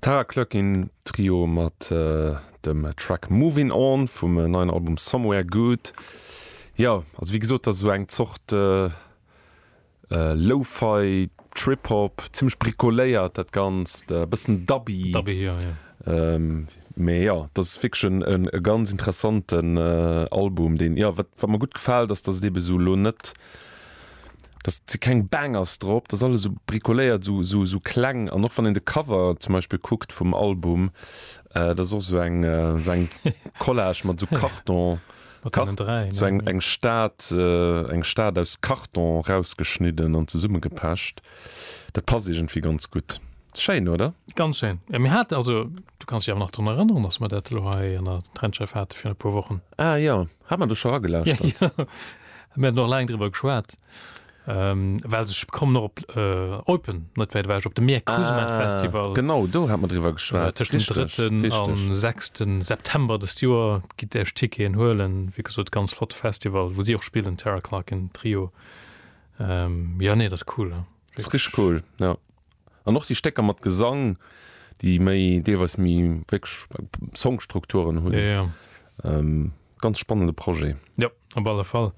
Tara Cluckin Trio mat dem Track Movin On vum neien Album Somewhere Good. Jo, also wéi gesot, dat ass esou eng Zort Lo-Fi, Trip-Hop, zimmlech bricoléiert dat Ganzt, e bëssen dubby. Mee jo, dat ass wierklech e ganz interessanten Album, deen, jo, wat mir gutt gefält, ass, datt et eeben esou elo net, da si keng Bangers drop, dat ass alles esou bricoléiert, esou esou esou kleng an och wann een de Cover zum Beispill kuckt vum Album, dat ass och esou eng esou eng Collage mat esou Karton, esou eng eng Stad eng Stad aus Karton rausgeschnidden an zesummegepecht. Dat passt iergendwéi ganz gutt. Schéin, oder? Ganz schéin. Jo, mir haten, also du kanns dech awer nach drun erënneren, datt mer dat elo hei an der Trendscheiw hate virun e puer Wochen? Ah jo. Hat man du scho agelauscht mir noch lang drwer geschwaart ähm, well sech kommen noch op äh, Open net wäit ewech op de Meer Kusma ah, Festival genau do hat man drwer geschwaart äh, den 3. am 6. September des Joer gitt der Stike en huelen wie gesot ganz flott Festival wo si och spielen Terra Clark en Trio ähm, ja nee das cool. Ja. Das ist cool ja. An och déi Stécker mat Gesang, déi méi, deelweis méi wierklech Songstrukturen hunn. Ganz spannende Projet. Jo, op alle Fall.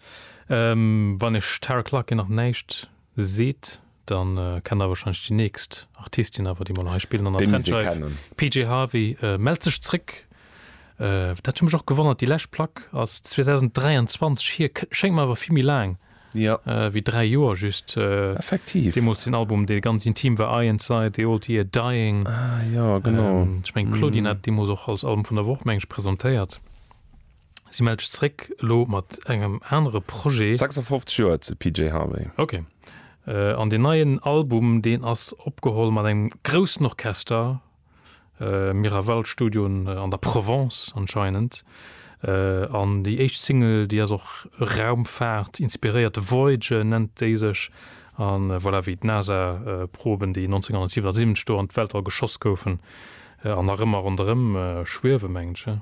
Wann iech Tara Clarke nach näischt seet, da kennt der warscheinlech déi nächst Artistin awer, déi mer nach hei spillen an der Trendscheif, PJ Harvey mellt sech zréck. Dat huet mech och gewonnert, déi lescht Plack ass 2023 hier, schéngt mer awer vill méi laang. wéi dräi Joer just, deemools deen Album, dee ganz intim war, Eye Inside the Old Year Dying. Ech mengen, d'Claudine hat deemools och als Album vun der Woch, meng ech, presentéiert. Si mellt sech zréck elo mat engem anere Projet. 56 Joer zu PJ Harvey. Ok. An deen neien Album, deen ass opgeholl mat engem groussen Orchester, Miraval Studio an der Provence anscheinend an déi éischt Single déi ass och Raumfahrt inspiréiert, Voyager nennt déi sech an voilà wéi d'Nasa Proben déi 1977 do an d'Weltall geschoss goufen an nach ëmmer ronderëm schwiewe mengen ech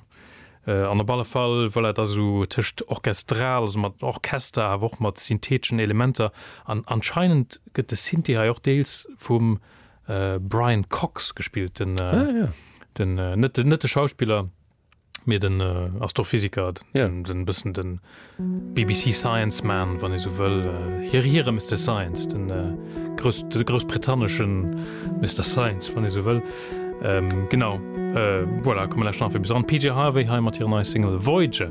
an op alle Fall voilà et ass esou tëscht orchestral, also mat Orchester awer och mat syntheteschen Elementer an anscheinend gëtt de Synthi hei och deels vum Brian Cox gespillt den äh, ah, ja. den äh, net net de Schauspieler mir den äh, Astrophysiker ja. den, den bisssen den BBC Science man wann ich so will äh, hier hier Mister Science den äh, groß, den großbritannischen Mister Science wann ich so will ähm, genau äh, voilà, kommen nach bis an PJ Harvey Heimat hier neue Single Voyager.